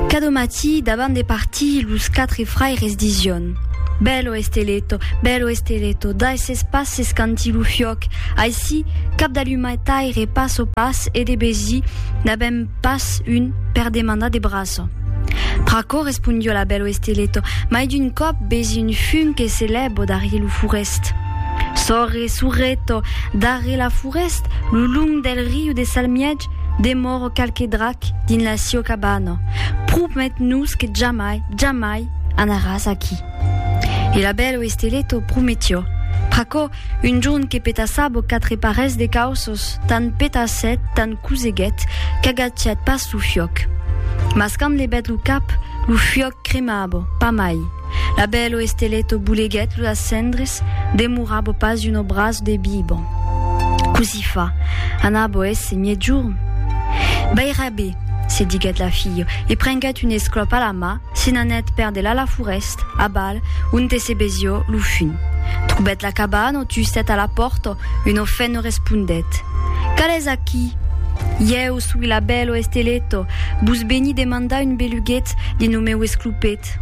Cada matí, davant de partir, los quatre fraires dision. Bello esteleto, bello esteleto, dai ses pas s'escanti lo fiòc, aicí, cap d'allumataire pas o pas e de besi n'avèm pas un per demandar de braço. Pr'aquò respondió la bello esteleto, mai d'un còp besi un fum que se lèbo darrier lo forest. Sorre, sorreto, darrier la forest, lo long del riu de Salmièg, demòro qualque drac dins la sieu cabana, promet-nos que jamai, jamai anaràs aquí. E la bèl Oesteleto prometió. Pr'aquò, un jorn que petassabo quatre parelhs de cauços, tant petassèt, tant coseguèt, qu'agachèt pas lo fiòc. Mas quand levèt lo cap, lo fiòc cremabo, pas mai. La bèl o esteleto boleguèt lo las cendres, demorabo pas un obraç de bibo. Cosí fa, anabo èsse miègjorn? Baira be, se diguèt la filho, e prenguèt un esclòp a la mà, se n'anèt per delà la forèst, abal, onte se besió lo fun. Trobèt la cabana o tustèt a la pòrta, un o fèn o respondèt, Cal es aquí? Ieu soi la bèl o esteleto, vos beni demandar un beluguet dins lo meu esclopet. Cat.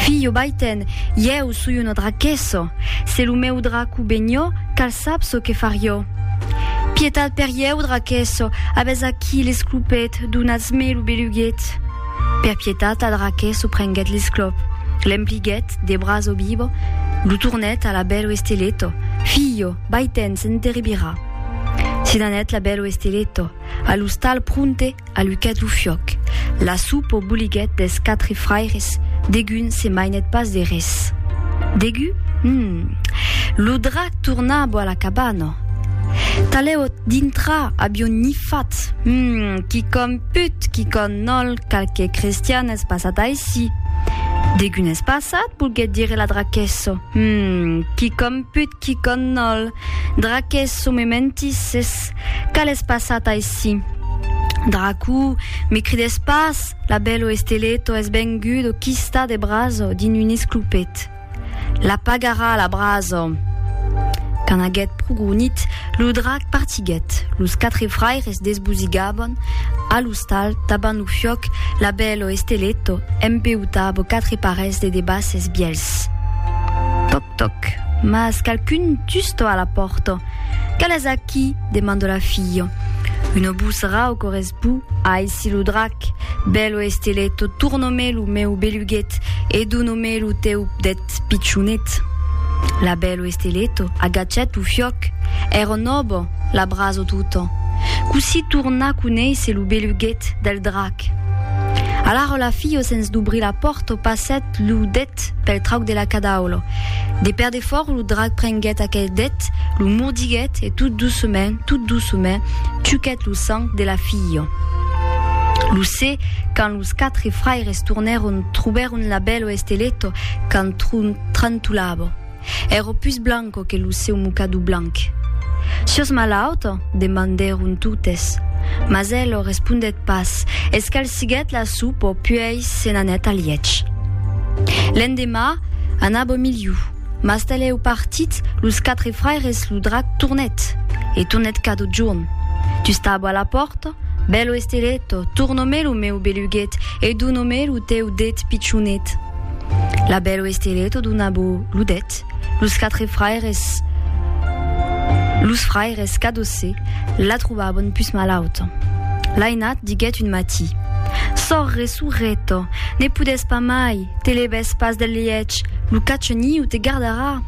Filho, vai-te'n, ieu soi una draquesso, se lo meu draco benhó, cal sap çò que farió. Pietat per ieu, draquesso, avès aquí l'esclopet, donatz-me lo beluguet. Per pietat la draquesso prenguèt l'esclop, l'empliguèt de braço bibo, lo tornèt a la bèl oesteletto, Filho, vai-te'n, s'enteribirà. Se n'anèt la bèl oesteletto, a l'ostal pronte, A lucat lo fiòc. La soup o boliguèt des quatre fraires, degun se mainèt pas de res. Degu? Hum! Lo drac torna bo a la cabana. Talèu ot dintra avion nifat. Hum! Quicòm put, quicòm nòl, qualque cristian es passat aicí. Degun es passat? volguèt dire la draquessa. Hum! Quicòm put, quicòm nòl. Draquessa, me mentisses. Qu'a l'es passat aicí? Dracu, me crides pas, la bèlo Esteleto es vengut o quista de braso dins un esclopet. La pagarà la braso! Quand aguèt pro gronit, lo drac partiguèt, los quatre fraires desbosigabon a l'ostal tabant lo fiòc, la bèlo Esteleto empeutabo quatre parelhs de debasses bièlhs. Toc, mas qualqu'un tusto a la pòrta. Qu'alas aquí? demanda la filha. Un obús rau corresbó, Aici lo drac! Bèlo estileto, torna-me lo meu beluguet e dona-me lo teu pdet pichonet. La bèlo estileto agachèt lo fiòc. Èra nòva, l'abraço tota. Cossí tornar conéisser lo beluguet del drac? Alara la filha sens dobrir la pòrta passèt lo det deth pel trauc de la cadaolo. De pèr de fòrç lo drac prenguèt aquel deth, lo mordiguèt e tot doçument, tot doçument, chuquèt lo sang de la filha. Lo se, quand los quatre fraires tornèron, trobèron la bèlo Esteleto qu'entrantolava. Ero pus blanco que lo seu mocador blanc. Sios malaut? demandèron totes. Mas el lo respondèt pas, escalsiguèt la sopa puèi se n'anèt al lièch. L'endemà, anava miliu, mas talèu partit, los quatre fraires lo drac tornèt, e tornèt cada jorn. Tu stabo a la pòrta? Bèlo esteletto, torno-me lo meu beluguet e dono-me lo teu det pichonet. La belle Oesteré tot una bo ludèt, los quatre fraires, los fraires Cadossé la trobabon pus malauta. Lainat diguèt un matí, Sorre, sorreta, ne podès pas mai, te levès pas del lièch, lo cachoniu te gardarà!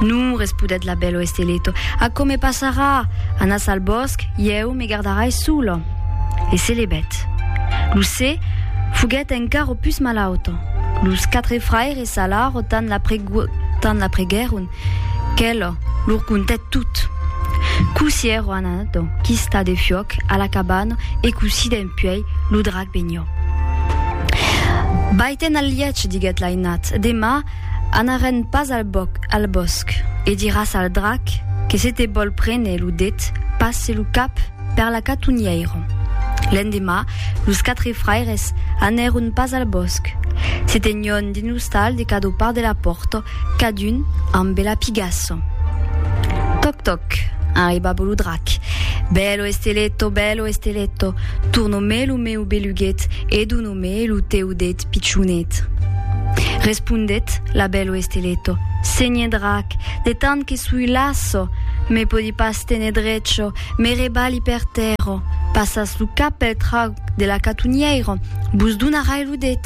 Non, respudèt la belle Oesteré, aquò me passarà, anas al bòsc, ieu me gardarai sola. E se levèt. Lo se foguèt encara pus malauta. Los quatre fraires s'alarò tant la preguèron qu'ela lor contèt tot. Cossí èrò anat dau quista de fiòc a la cabana e cossí dempuèi lo drac venió. Vai-te'n al lièch, diguèt l'ainat, demà anarèn pas al bòsc e diràs al drac que se te vòl prene lo det, pas se lo cap, Per la catunhièron. L'endemà, los quatre fraires anèron pas al bòsc. Se tenion dins l'ostal de cada part de la pòrta, cadun amb bela pigassa. Tòc tòc! arribava lo drac. Bèlo Esteletto, bèlo Esteletto, torna-me lo meu beluguet e dona-me lo teu det pichonet. Respondèt la bèlo Esteletto, Senhe drac, de tant que sui lasso, me pòdi pas tene drecho, Me rebali per tèrra, passas lo cap pel trauc de la catunhièira, vos donarai lo det.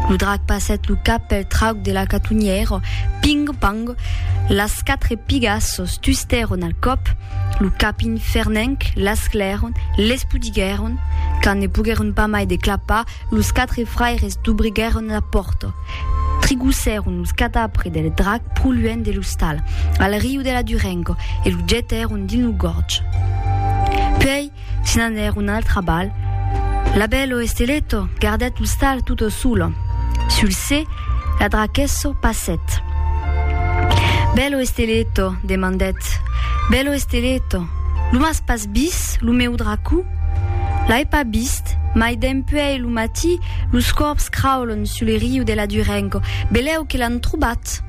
Lo drac passèt lo cap pel trauc de la catunhièira, ping, pang, las quatre pigas sos tustèron al còp, lo cap infernenc, l'esclèron, l'espudiguèron, quand ne poguèron pas mai de clapar, Los quatre fraires dubriguèron la pòrta, trigossèron los cadavres del drac pro luènh de l'ostal, al riu de la Durengo, e lo jetèron dins lo gòrg. Puèi se n'anèron al trabalh. L'abello Esteletto gardèt l'ostal tutto solo. Sul se, la drachesso passèt. Bello Esteletto, demandèt, bello Esteletto, lo m'as pas Bis, lo meu dracu? L'ai pas bist, mai dempuèi lo matí los corbs craulon sus le riu de la Durenco, belèu que l'an trobat!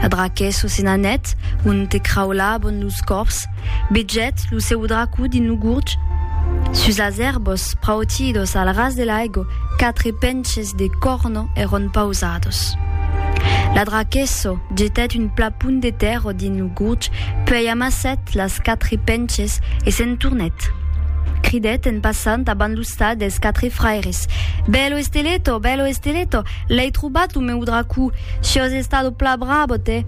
La draquesso se n'anèt onte craulabon los corbs, bejèt lo seu dracu dins lo gurg. Sus las èrbos prautidos al ras de l'aigo, quatre penches de corno èron pausados. La draquesso jetèt un plapon de tèrro dins lo. Gurg, puèi amassèt las quatre penches e se'n tornèt. Cridèt en passant abans lo stà dels quatre fraires, Bèlo Esteletto, bèlo Esteletto, l'èi trobat lo meu dracó, siòs estado pla bravo te,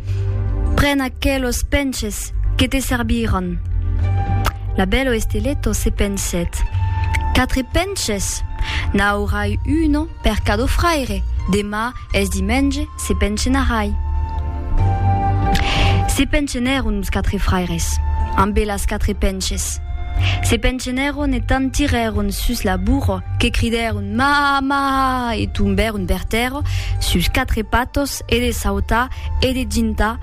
pren aquelos penches, que te serviràn. La bèlo Esteletto se pensèt, Quatre penches? N'aurai uno? Per cadó fraire, demà es dimenge, se penchenarai. Se penchenèron los quatre fraires, ambe las quatre penches. Se penchenèron e tant tirèron sus la burro que cridèron Maha! Maha! e tombèron per tèrra sus quatre patos e de sautar e de gintar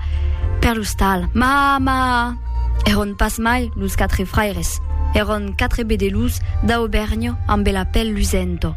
per lo stal Maha! Maha! Èron pas mai los quatre fraires, èron quatre bedelhos d'Aubèrnha ambe la pel lusento.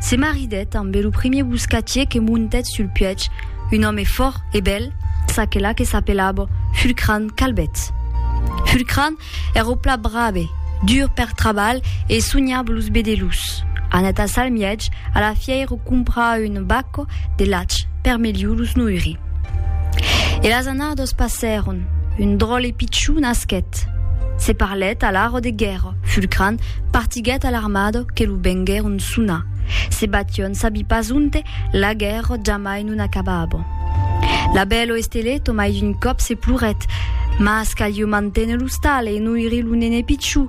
Se maridèt ambe lo primier boscatier que montèt sul puèch, un òme fòrt e bèl, çaquelà que s'apelava Fulcran Calbèt. Fulcran èra o plat brave, dur per trabalh e sonhava los bedelhos. Anèt a Salmièch a la fièira comprar un bac de lach per melhor los noiri. E las annados passèron, un dròlle pichon nasquèt, se parlèt a l'aro de guèrra, Fulcran partiguèt a l'armada que lo venguèron sonar, se bation sabi pas onte, la guèrra jamai non acabava. L'abèlo Esteleto mai d'un còp se plorèt, Mas calheu manténer l'ostal e noiri lo nene pichon,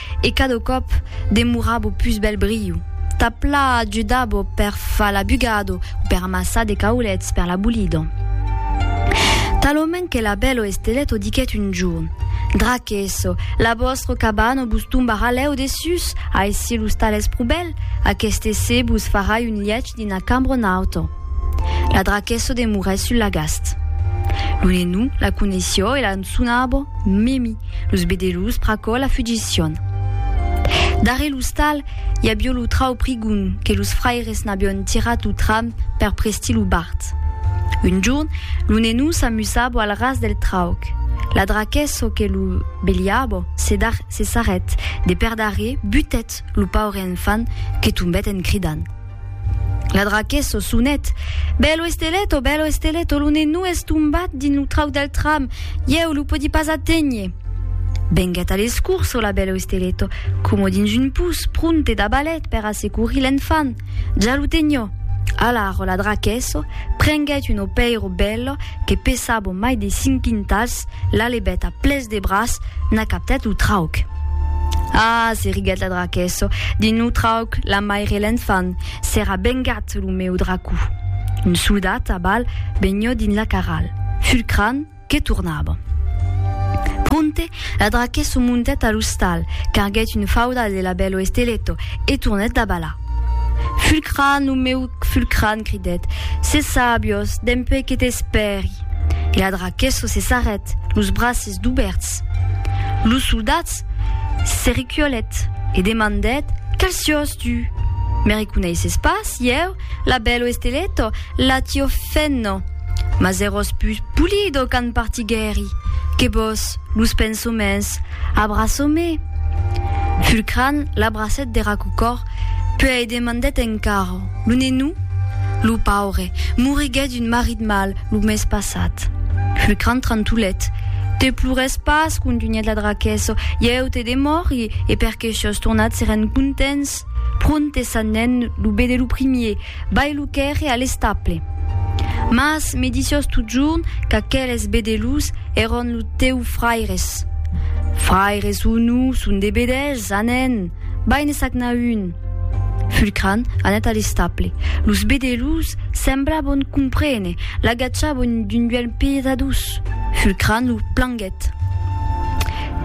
E cada còp demorava o pus bèl briu. Ta pla ajudava o per far la bugada o per amassar de caulets per la bolida. Talament que la bèla Estelèt o diguèt un jorn, Draquesso, la vòstra cabana vos tombarà lèu dessús, aicí lo stal es pro bèl, aqueste essé vos farà un lièch dins la cambra nauta. La Draquesso demorèt sul lagast. Lo nenou la coneissió e la sonava Mimi. Los bedelus pr'aquò la fugission. Darrè l'ostal, i avió lo trau prigon que los fraires n'avión tirat o tram per prestir lo bart. Un jorn, lo nenó s'amusabo al ras del trauc. La draquesso que lo beliabo se dar se sarrèt de per darrè butèt lo paure enfant que tombèt en cridant. La draque s'o sonet. Bèlo estelet, o bèlo estelet, o lo nenou es tombat dins lo trauc del tram, ieu lo podi pas aténher. Venguèt a l'escurç, o la bèlo estelet, coma dins un pus, pronte dabalet per a securir l'enfant. Ja lo tenho. Alar, o la draque s'o prenguèt un opèiro bèlo que pesaba mai de cinc quintals, L'alebèt a ples de braç n'a captèt lo trauc. Ah, se riguèt la draquesso, dins lo trauc la maire e l'enfant, s'èra bengat lo meu dracou. Un soldat a bal benhó dins la carral, fulcrant que tornava. Pronte, la draquesso montèt a l'ostal, carguèt un fauda de labèlo esteletto e tornèt d'abalar. Fulcran, lo meu Fulcran, cridèt, se sabios, dempuèi que t'espèri. E a Draquesso se sarrèt, los braces dubèrts. Lo soldat se recuolèt e demandèt, Quel siós tu? Me reconeisses pas, ieu, l'abello estelletto, l'atio fenno? Mas èròs pus pulido qu'an partiguèri que vos, los pensoments, Abraço-me! Fulcran l'abracèt dera cocor, puèi demandèt encara, Lo nenou? Lo paure, moriguèt d'un marit mal lo mes passat. Fulcran trantolèt, Te plores pas, contunhèt la draquesso, ieu te demòri, e perqué shos tornats seren contents. Pronte sanèn lo be de lo primier. Vai lo quèrre a l'estaple. Mas me disiós totjorn qu'aqueles bedelhs èron lo teu fraires. Fraires o non, son de bedelhs, anèn, vai ne sagnar un. Fulcran anèt a l'estaple. Los bedelhs semblabon comprene, l'agatjabon d'un duelh pietadós. Fulcran lo planguèt.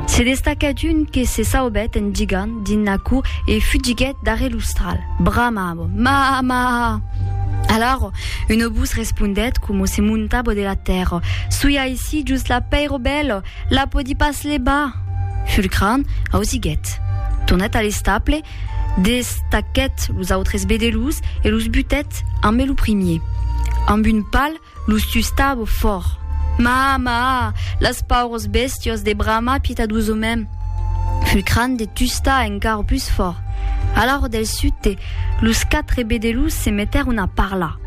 Se destaquèt un que se saubèt en gigant dins la cour e fugiguèt. Darrèr l'ostral, bramavo, Maha! Maha! Alaro, un obús respondèt coma se montavo de la tèrra, Soi aicí just la pèira bèla, la pòdi pas levar! Fulcran ausiguèt, tornèt a l'estable, destachèt los autres bedelús e los butèt ambe lo primier, amb un pal Los tustavo fòrt. Maa, maa, las paures bèstios de bramar pietadosomèm. Fut cran de tustar encara pus fòrt. A l'aro del sute, los quatre bedelus se metèron a parlar.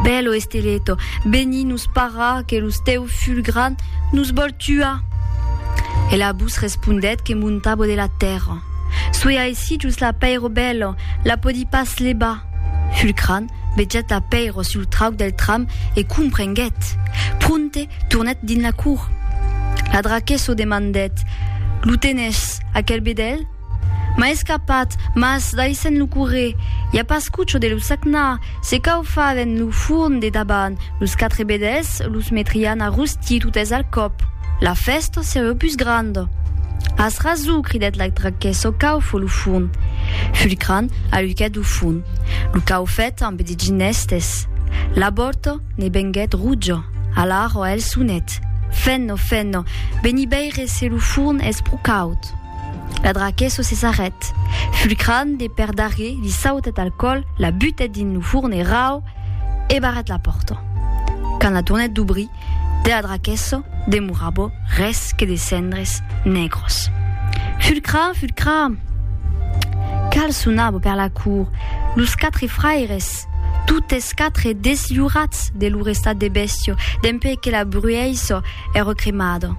Bèlo Esteleto, veni nos parrar que los teu ful gran nos vòl tuar! E la bus respondèt que montavo de la tèrra. Soi aicí jos la pèiro bèlo, la pòdi pas levar. Ful cran, Vejat a Pèiro sul trauc del tram e comprenguèt. Pronte, tornèt dins la cour. La draquesso demandèt, Lo tenes, aquel bedèlh? M'a escapat, mas, daissèn lo correr, i a pas cucho de lo sagnar, se caufaven lo forn de daban, los quatre bedèlhs los metrián a rostir, Ti totes al còp, la fèsta sereu pus granda. As rason, cridèt la traquèssa au caufe lo fon. Fulcran aluquèt lo fon. Lo caufèt ambe de ginestes. La bòrta ne venguèt roja. Alara el sonèt. Fenna, fenna, veni veire se lo forn es pro caud. La traquèssa se sarrèt. Fulcran de perdarrèr li sautèt al còl, la butèt dins lo forn e rau, e barrèt la pòrta. Quand la tornèt dobrir, de la draquèssa demorava res que de cendres nègras. Fulcra, fulcra! Cal sonava per la cour, los quatre fraires, totes quatre deslhorats de lor estat de bèstia dempuèi que la bruèissa èra cremada.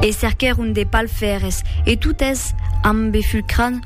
E cerquèron de palfèrres e totes ambe fulcrant,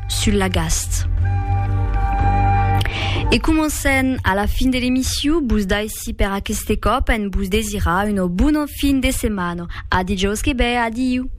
sul lagast. E comencem a la fin de l'emission, bus daissi per aqueste cop en bus desirar una bona fin de setmana. A dijòus que ve, adiu!